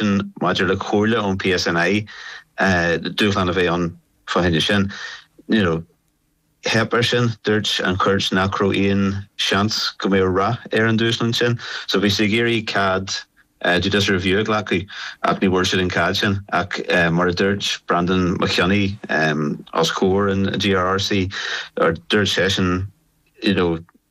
sin maidir le comhairle ón PSNI, dúshlán a bheidh ann fá choinne sin. Theip ar sin, dúirt an chúirt nach raibh aon seans go mbeadh rath ar an dúshlán sin. So bhí siad ag iarraidh cead judicial review a ghlacadh ach ní bhfuair siad an cead sin. Ach mar a dúirt Breandan Mac Cionnaith os comhair an GRRC, dúirt seisean, you know,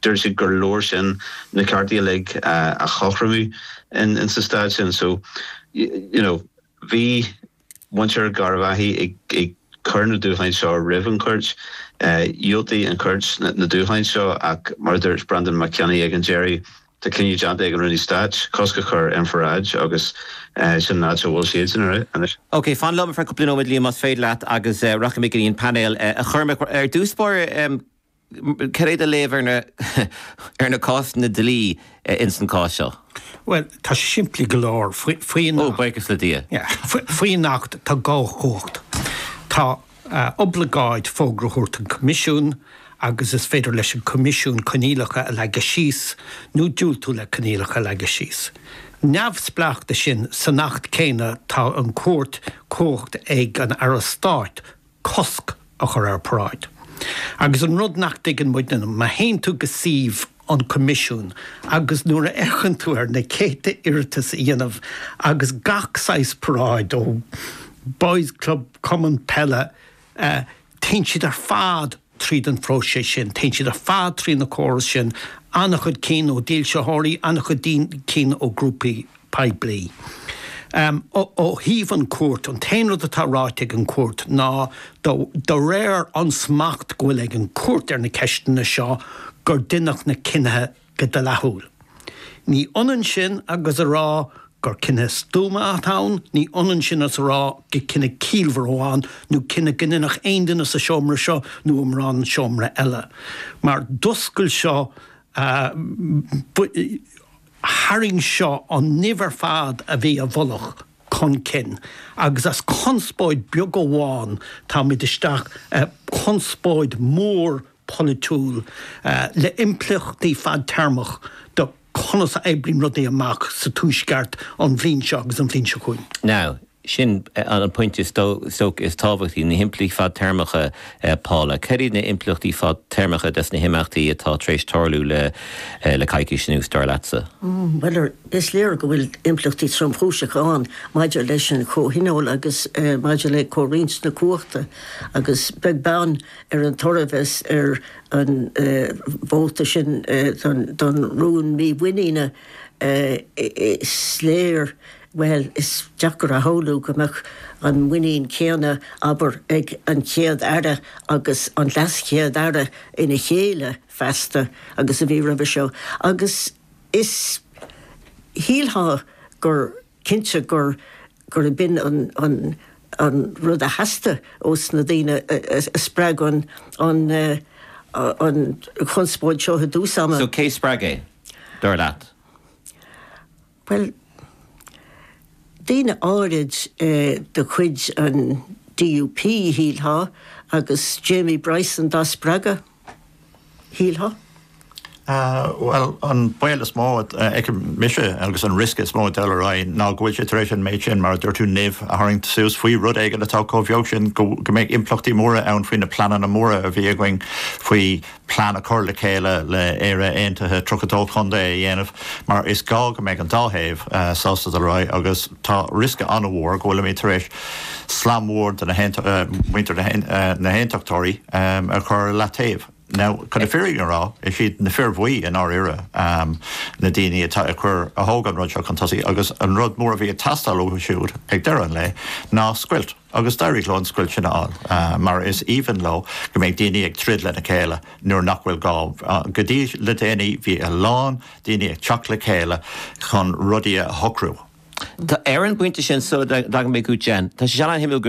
Dúirt siad gur leor sin na cearta uilig a chothromú insa stát sin. So, you know, bhí muintir Gharbhathi ag cur na dúshláin seo roimh an chúirt. Dhiúltaigh an chúirt na dúshláin seo ach mar a dúirt Breandan Mac Cionnaith ag an deireadh, tá cinneadh déanta ag an Rúnaí Stáit cosc a chur ar an pharáid agus sin an áit a bhfuil siadsan anois. OK, fan liom ar feadh cúpla nóiméad, más féidir leat agus rachaidh mé go dtí an painéal. A Chormaic, ar dtús báire, Cad é do léamh ar na cásanna dlí ins an cás seo? Bhuel, tá sé simplí go leor. Faoin Acht tá dhá chumhacht. Tá oibleagáid fógra a thabhairt an Coimisiún agus is féidir leis an gCoimisiún coinníollacha a leagadh síos nó diúltú le coinníollacha a leagadh síos. Neamhspleách de sin, san Acht céanna tá an-chuid cumhacht ag an Aire Stáit, cosc a chur ar paráid. Agus an rud nach dtuigeann muidne ná, má théann tú go suíomh an Choimisiúin agus nuair a fhéachann tú ar na céadta iarratas a dhéanann agus gach saghas paráid ó Boys Club, Cumann Peile, eh, téann siad ar fad. Tríd an phróiseas sin, téann siad ar fad trí na córais sin, an-chuid cinn ó dhílseoirí, an-chuid cinn ó ghrúpaí poiblí. Ó thaobh an chúirt, an t-aon rud atá ráite ag an gcúirt ná, de réir an smacht go bhfuil ag an gcúirt ar na ceisteanna seo, gur deineadh na cinnithe Go dleathúil. Ní h-ionann sin agus a rá gur cinneadh stuama atá ann, ní h-ionann sin is a rá go cinneadh ciallmhar atá ann nó cinneadh go ndéanfadh aon duine sa seomra seo nó in aon seomra eile. Mar d'oscail seo, tharraing seo an nimh ar fad a bhí i bhfolach chun cinn agus as conspóid beag amháin táimid isteach i conspóid mhór polaitiúil le impleachtaí fadtéarmach do conas a oibríonn rudaí amach sa Tuaisceart an bhliain seo agus an bhliain seo chugainn. Now, sin an pointe is dócha is tábhachtaí, na himpleachtaí fadtéarmacha, Paula. Cad iad na impleachtaí fadtéarmacha des na himeachtaí atá tar éis tarlú le coicís anuas, dar leatsa? Bhuel, is léir go bhfuil impleachtaí tromchúiseacha ann maidir leis an chomhthionól agus maidir le comhroinnt na cumhachta agus beag beann ar an toradh a bheas ar an vóta sin don rún mímhuiníne, is léir, bhuel, is deacair a shamhlú go mbeadh an muinín céanna, abair, ag an Chéad-Aire agus an LeasChéad-Aire ina chéile feasta agus a bhí roimhe seo. Agus shílfeá gur. cinnte gur gur b'in an an an rud a theastaigh ós na daoine a spreag an an an chonspóid seo i dtús ama. So cé spreag é, dar leat? Bhuel, daoine áirid de chuid an DUP, shílfeá, agus Jamie Bryson dá spreagadh. shílfeá. Bhuel, an baol is mó a fheicim mise agus an riosca is mó ag dul ar aghaidh ná go bhfuil sé tar éis an méid sin, mar a dúirt tú, nimh a tharraingt suas faoi rud éigin atá chomh bheag sin go mbeidh impleachtaí móra ann faoi na pleananna móra a bhí againn faoi phlean a chur le chéile le Éire Aontaithe 32 Chontae a dhéanamh mar is gá go mbeidh an dá thaobh sásta dul ar aghaidh agus tá riosca an-mhór go bhfuilimid tar éis Slám mhór de mhuintir na hAontachtóirí a chur i leataobh. Now, chun na fírinne a rá, is iad na fir bhuí, i ndáiríre, na daoine atá ag cur, a thóg an rud seo chun tosaigh agus an rud mór a bhí ag teastáil uathu siúd ag deireadh an lae ná scoilt agus d'éirigh leo an scoilt sin a fháil mar is aoibhinn leo go mbeidh daoine ag troid lena chéile nuair nach bhfuil gá, go dtí le déanaí bhí a lán daoine ag teacht le chéile chun rudaí a shocrú. Tá ar an bpointe sin, sula dtagann mé chugat, Jen, tá sé an-shuimiúil go.